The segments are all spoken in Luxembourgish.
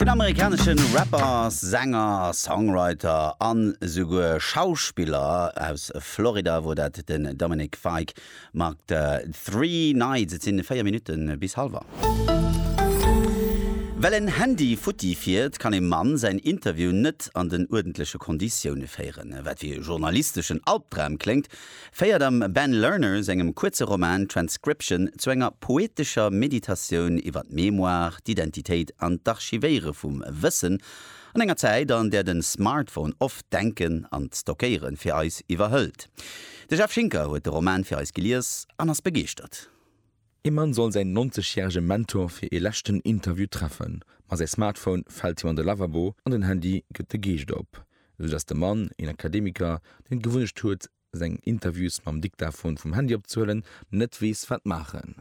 Den amerikanesche Rapper, Sänger, Songwriter a souguer Schauspiller aus Florida wor dat, den Dominic Fike mat Three Nights. Et sinn 4 Minutten bis halwer. Well en Handy futti fiert, kann e Mann säin Interview net an den uerdentleche Konditioune féieren. Wat wéi e journalisteschen Albdram kléngt, féiert am Ben Lerner sengem kuerze Roman Transcription zu enger poetescher Meditatioun iwwer d'Mémoire, d'Identitéit an d'Archivéiere vum Wëssen an enger Zäit, an där de Smartphone oft d'Denken an d'Stockéiere fir eis iwwerhëlt. De Jeff Schinker huet de Roman fir eis gelies an ass begeeschtert. Ee Mann soll säin 90 järege Mentor fir ee leschten Interview treffen, ma säi Smartphone fält him an de Lavabo an den Handy gëtt de Geescht op, sou dass de Mann, een Akademiker, deen d'Gewunnecht huet seng Interviews mam Diktaphon vum Handy opzehuelen, net weess wat maachen.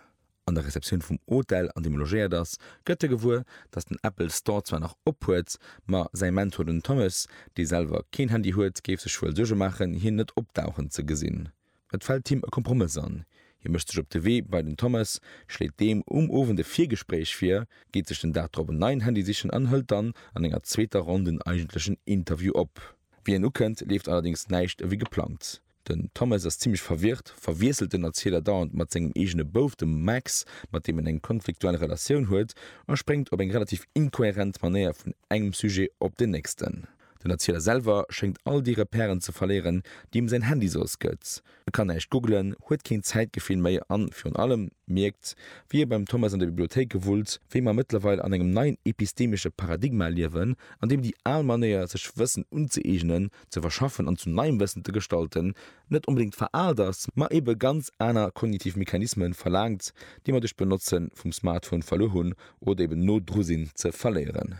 An der Receptioun vum Hotel an deem e logéiert ass, gëtt e gewuer, dass den Apple Store zwar nach op huet, ma säi Mentor, den Thomas, dee selwer keen Handy huet, géif sech wuel Suerge maachen hien net opdauchen ze gesinn. Et fält him e Kompromëss an, hie mécht sech op de Wee bei den Thomas, schléit deem um Owend e Virgespréich vir, geet sech den Dag drop en neien Handy sichen an hëlt dann an enger zweeter Ronn den eigentlechen Interview op. Wéi en ukënnt, leeft allerdéngs näischt ewéi geplangt. Den Thomas ass zimmlech verwirrt, verwiesselt den Erzieler dauernd mat sengem eegene Bouf, dem Max, mat deem en eng konfliktuell Relatioun huet, a spréngt op eng relativ inkohärent Manéier vun engem Sujet op den nächsten. Den Erzieler selwer schéngt all déi Repèren ze verléieren, déi him säin Handy soss gëtt. E kann näischt googelen, huet keen Zäitgefill méi an, virun allem, mierkt, wéi e beim Thomas an de Bibliothéike wullt, wéi mer mëttlerweil an engem neien epistemesche Paradigma liewen, an deem déi al Manéier, sech Wëssen unzëeegnen, ze verschaffen an zu neiem Wëssen ze gestalten, net onbedéngt veraalt ass, ma ebe ganz aner kognitiv Mechanisme verlaangt, déi mer duerch d'Benotze vum Smartphone verluer hunn oder eben no dru sinn, ze verléieren.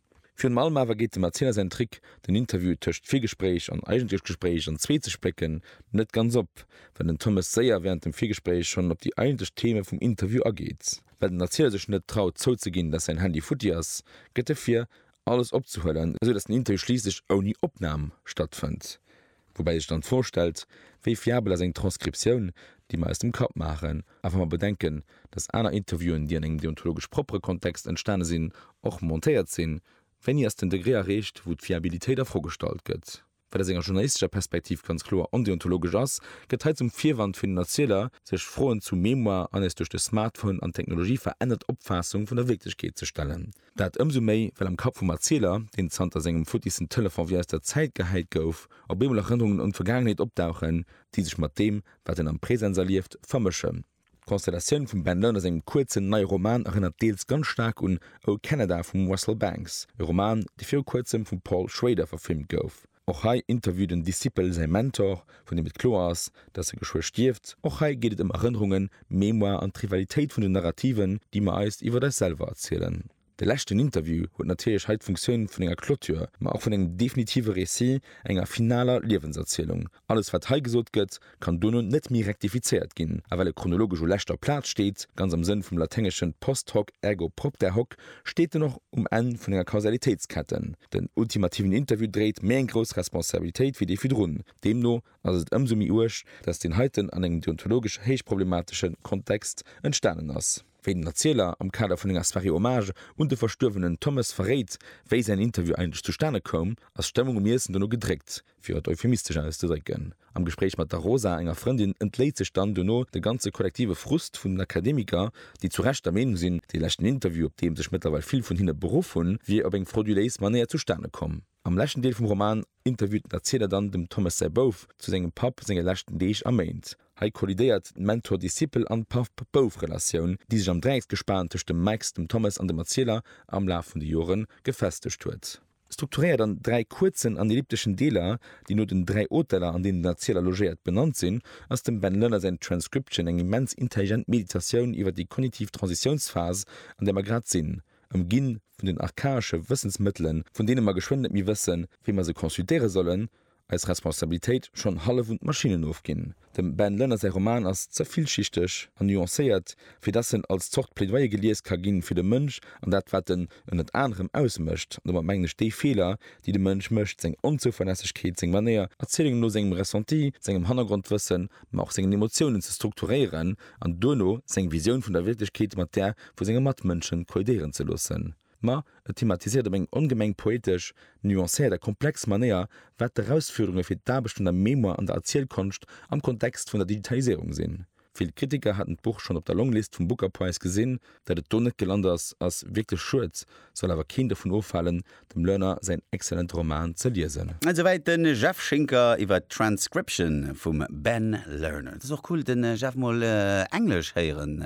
Virun allem awer geet dem Erzieler säin Trick, den Interview tëscht Virgespréich an eigentlechem Gespréich an zwee ze splécken, net ganz op, well den Thomas séier wärend dem Virgespréich schonn op déi eigentlech Theme vum Interview ageet. Well den Erzieler sech net traut zouzeginn, dass säin Handy futti ass, gëtt e vir, alles opzehuelen, esou dass den Interview schliisslech ouni Opnam stattfënnt. Woubäi sech dann d'Fro stellt, wéi fiabel ass eng Transkriptioun, déi mer aus dem Kapp maachen? A wa mer bedenken, datt aner Interviewen, déi an engem deontologesch proppere Kontext entstane sinn, och montéiert sinn, wéini ass den Degré erreecht, wou d'Fiabilitéit a Fro gestallt gëtt? Wat aus enger journalistescher Perspektiv ganz kloer ondeontologesch ass, gëtt hei zum Virwand fir den Erzieler, sech Froen zu Mémoire an eis duerch de Smartphone an d'Technologie verännert Opfaassung vun der Wierklechkeet ze stellen. Dat ëmsou méi, well am Kapp vum Erzieler, deen zanter sengem futtissen Telefon wéi aus der Zäit gehäit gouf, op eemol Erënnerungen un d'Vergaangenheet opdauchen, déi sech mat deem, wat en am Presens erlieft, vermëschen. D'Konstellatioun vum Ben Lerners engem kuerzen, neie Roman erënnert deels ganz staark un O Canada vum Russell Banks, e Roman, dee viru kuerzem vum Paul Schrader verfilmt gouf. Och hei interviewt en Discipel säi Mentor, vun deem et kloer ass, datt e geschwë stierft. Och hei geet et ëm Erënnerungen, Mémoire an d'Rivalitéit vun den Narrativen, déi mer eis iwwer eis selwer erzielen. De leschten Interview huet natierlech hei d'Funktioun vun enger Clôture, ma och vun engem definitive Récit, enger finaler Liewenserzielung. Alles wat hei gesot gëtt, kann dono net méi rektifizéiert ginn, a well e chronologesch u leschter Plaz steet, ganz am Sënn vum laténgeschen post hoc ergo propter hoc, steet en och um Enn vun enger Kausalitéitsketten. Den ultimativen Interview dréit méi eng grouss Responsabilitéit wéi dee virdrun. Deemno ass et ëmsou méi uerg, datt deen heiten an engem deontologesch héich problematesche Kontext entstanen ass. Wéi den Erzieler am Kader vun enger Soirée Hommage un de verstuerwenen Thommes verréit, wéi säin Interview eigentlech zustane koum, ass d'Stëmmung um Iessen dono gedréckt. Fir et euphemistesch auszedrécken, Am Gespréich mat der Rosa, enger Frëndin, entléit sech dann duerno de ganze kollektive Frust vun den Akademiker, déi zu Recht der Meenung sinn, dee leschten Interview, op dee sech mëttlerweil vill vun hinne beruff hunn, wier op eng frauduléis Manéier zustane komm. Am leschten Deel vum Roman interviewt den Erziler dann dem Thomas säi Bouf zu sengem Papp senge leschten Deeg a Méint. Hei kollidéiert d'Mentor-Discipel an Papp-Bouf-Relatioun, déi sech am Dräiecksgespan tëscht dem Max, dem Thomas an dem Erzieler am Laf vun de Jore gefestegt huet. Strukturéiert an dräi kuerzen an ellipteschen Deeler, déi no den dräi Hoteller, an deenen den Erzieler logéiert, benannt sinn, ass dem Ben Lerner säin Transcription eng immens intelligent Meditatioun iwwer déi kognitiv Transitiounsphas, an där mer grad sinn, ëmginn vun den archaesche Wëssensmëttelen, vun deene mer geschwënn net méi wëssen, wéi mer se consultéiere sollen, Eis Responsabilitéit, schonn hallef un d'Maschinnen ofginn. Dem Ben Lënner säi Roman ass ze villschichteg an nuancéiert, fir dass en als Zort Plädoyer gelies ka ginn, fir de Mënsch an dat, wat en ënnert anerem ausmécht, an domat mengen ech déi Feeler, déi de Mënsch mécht, seng Onzouverlässegkeet, seng Manéier, Erzielungen no sengem Ressenti, sengem Hannergrondwëssen, ma och sengen Emotiounen ze strukturéieren an duerno seng Visioun vun der Wierklechkeet mat där vu senge Matmënschen kollidéieren ze loossen. Ma et thematisiert op eng ongemeng poetesch, nuancéiert a komplex Manéier, wat d'Erausfuerderunge fir d'Aarbecht un der Mémoire an der Erzielkonscht am Kontext vun der Digitaliséierung sinn. Vill Kritiker haten d'Buch schonn op der Longlist vum Booker Prize gesinn. Dat et do net gelant ass, ass wierklech schued, soll awer keen dovun ofhalen, dem Lerner säin excellente Roman ze liesen. Esouwäit de Jeff Schinker iwwer Transcription vum Ben Lerner. Et ass och cool de Jeff mol englesch héieren.